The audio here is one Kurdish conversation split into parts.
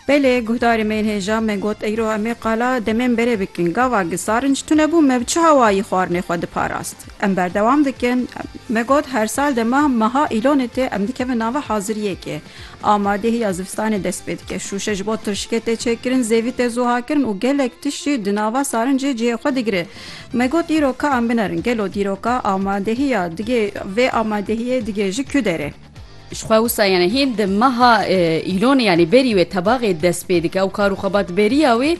Belê guhdarê me yên hêja me got eyro em ê qala demên berê bikin. Gava gisarinc tune bû me bi çi hawayî xwarinê xwe diparast. Em berdewam dikin. Me got her sal dema meha îlonê tê em dikevin nava haziriyekê. Amadehî ya zivistanê dest pê dike. Şûşe ji bo tirşikê tê çêkirin, zêvî tê zuhakirin û gelek tişt jî di nava sarincê cihê xwe digire. Me got îro ka em binerin gelo dîroka amadehiya digê vê amadehiyê digê ji ku derê. Ji xwe wisa yanî hîn di meha Îlonê yanî berî wê tebaxê dest pê dike û kar û xebatberiya wê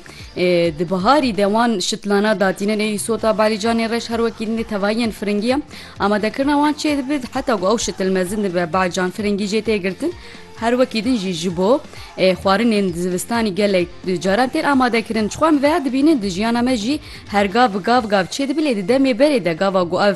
di biharî de wan şitlana datîne nê sota balîcanê reş her wekî din dê tevahiyên firingî ye amadekirina wan çê dibe heta ku ew şitil mezin dibe bacan firingî jê tê girtin her wekî din jî ji bo xwarinên di zivistanî gelek caran tên amadekirin çixwe em veya dibînin di jiyana me jî her gav bi gav gav çê dibe lê di demê berê de gava ku ev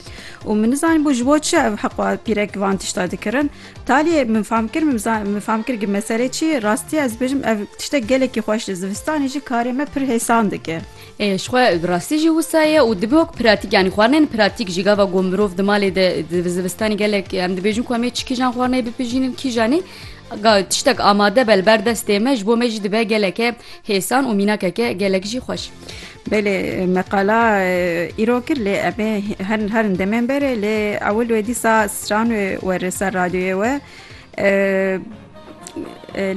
û min nizanî bû ji bo çi ev heqwa pîrek van tişta dikirin. Taliyê min fam kir min fam kir ki meselê çi ye rastiya ez bêjim ev tiştek gelekî xweş li zivistanê jî karê me pir hêsan dike. Ê ji xwe bi rastî jî wisa ye û dibe wek pratîk yanî xwarinên pratîk jî gava ku mirov di malê de di zivistanê gelek em dibêjin ku em ê çi kîjan xwarineyê bipijînin kîjanî tiştek amade be li ber destê me ji bo me jî dibe geleke hêsan û mînakeke gelek jî xweş. Belê me qala îro kir lê em ê her herin demên berê lê ewil wê dîsa stran wê were ser radyoyê we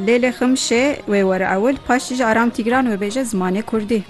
lê lê ximşê wê were ewil paştî ji aram tîgran wê bêje zimanê kurdî.